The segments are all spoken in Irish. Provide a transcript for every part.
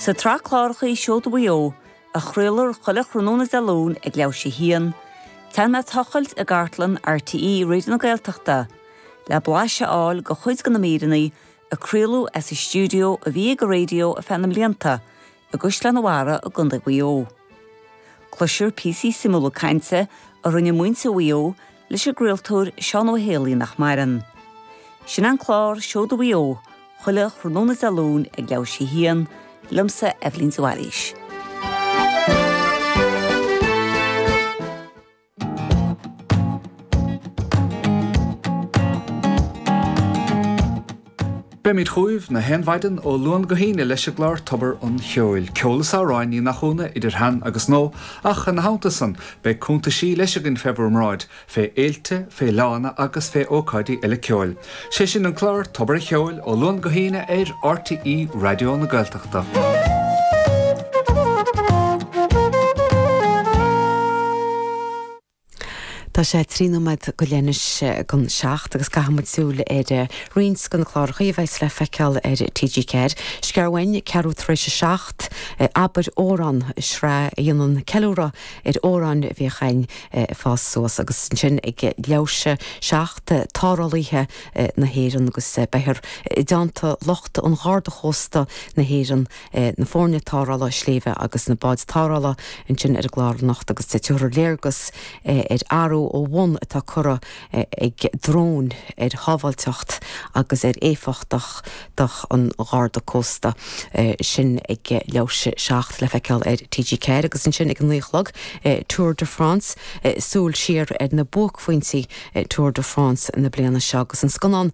Sa tsraith cláracha Seoda Mhaigh Eo, a chraolar chuile thráthnóna Dé Luain ag leathuair tar éis a haon, téann mé ag tochailt i gcartlann RTÉ Raidió na Gaeltachta le blaiseadh a fháil de chuid de na míreanna a craoladh as an stiúideo a bhí ag an raidió ar feadh na mblianta i gCaisleán a' Bharraigh i gContae Mhaigh Eo. Cloisear píosaí suimiúla cainte a rinne muintir Mhaigh Eo leis an gcraoltóir Seán Ó hÉalaí nach maireann. Sin an clár Seoda Mhaigh Eo chuile thráthnóna Dé Luain ag leathuair tar éis a haon, liomsa, Eibhlín de Bhailís. Beimid chugaibh 'chaon mhaidin ó Luan go hAoine leis an gclár Tobar an Cheoil, ceol is amhráin Uí Mhathúna idir shean agus nua, ach ina theannta san beidh cúntaisí leis againn fé bhur mbráid, fé fhéilte, fé fhleánna agus fé ócáidí eile ceoil. Sé sin an clár Tobar a' Cheoil ó Luan go hAoine ar RTÉ Raidió na Gaeltachta. Tá sé trí nóiméad go leith anois dhon seacht agus caithfidh muid súil ar roinnt de na cláracha a bheas le feiceáil ar TG4. Scéal mhuinn, ceathrú tar éis a seacht, Abair Amhrán, sraith a dhéanann ceiliúradh ar amhráin a bhíodh againn ag fás suas agus ansin ag leathuair tar éis a seacht tarrthálaithe na hÉireann agus beifear i dteannta lucht an Gharda Chósta na hÉireann na foirne tarrthála sléibhe agus na báid tarrthála ansin ar an gclár anocht agus tabharfar léargas ar athrú ó bhun atá curtha ag dróin ar shábháilteacht agus ar éifeachtacht an Gharda Cósta. Sin ag leathuair tar éis a seacht le feiceáil ar TG4 agus ansin ag a naoi a chlog, Tour de France, súil siar ar na buaicphointí Tour de France na bliana seo agus an scannán,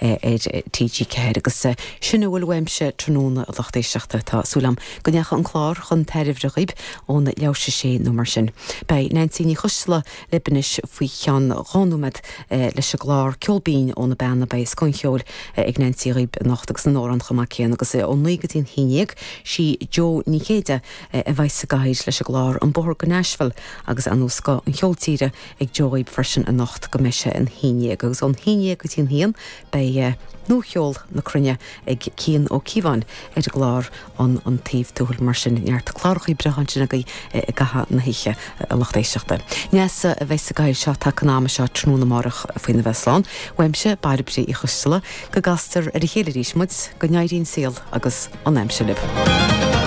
ar TG4 agus sin a bhfuil uaimse tráthnóna a lucht éisteachta. Tá súil agam go ndeacha an clár chun tairbhe dhaoib ón leathuair tar éis a sé nó mar sin. Beidh Neansaí Ní Choisdealbha lib anois faoi cheann dhá nóiméad leis an gclár Ceol Binn ó na Beanna. Beidh scoth an cheoil ag Neansaí dhaoib anocht agus na n-amhrán chomh maith céanna agus ó naoi go dtí an haon dhéag sí Jo Ní Chéide a bheas sa gcathaoir leis an gclár An Bóthar go Nashville agus an-scoth an cheol tíre ag Jo freisin anocht go mbeidh sé an haon dhéag agus ón haon dhéag go dtí an haon beidh nuacheol na cruinne ag Cian Ó Cíobháin ar an gclár an an taobh tuathail mar sin neart clárachaí breátha ansin agaibh i gcaitheamh na hoíche a lucht éisteachta. Neasa a bheas sa gcathaoir seo taca an ama seo tráthnóna amárach faoina bheith slán uaimse Bairbre Uí Choisdealbha go gcastar ar a chéile arís muid go n-éirí an saol agus an aimsir libh.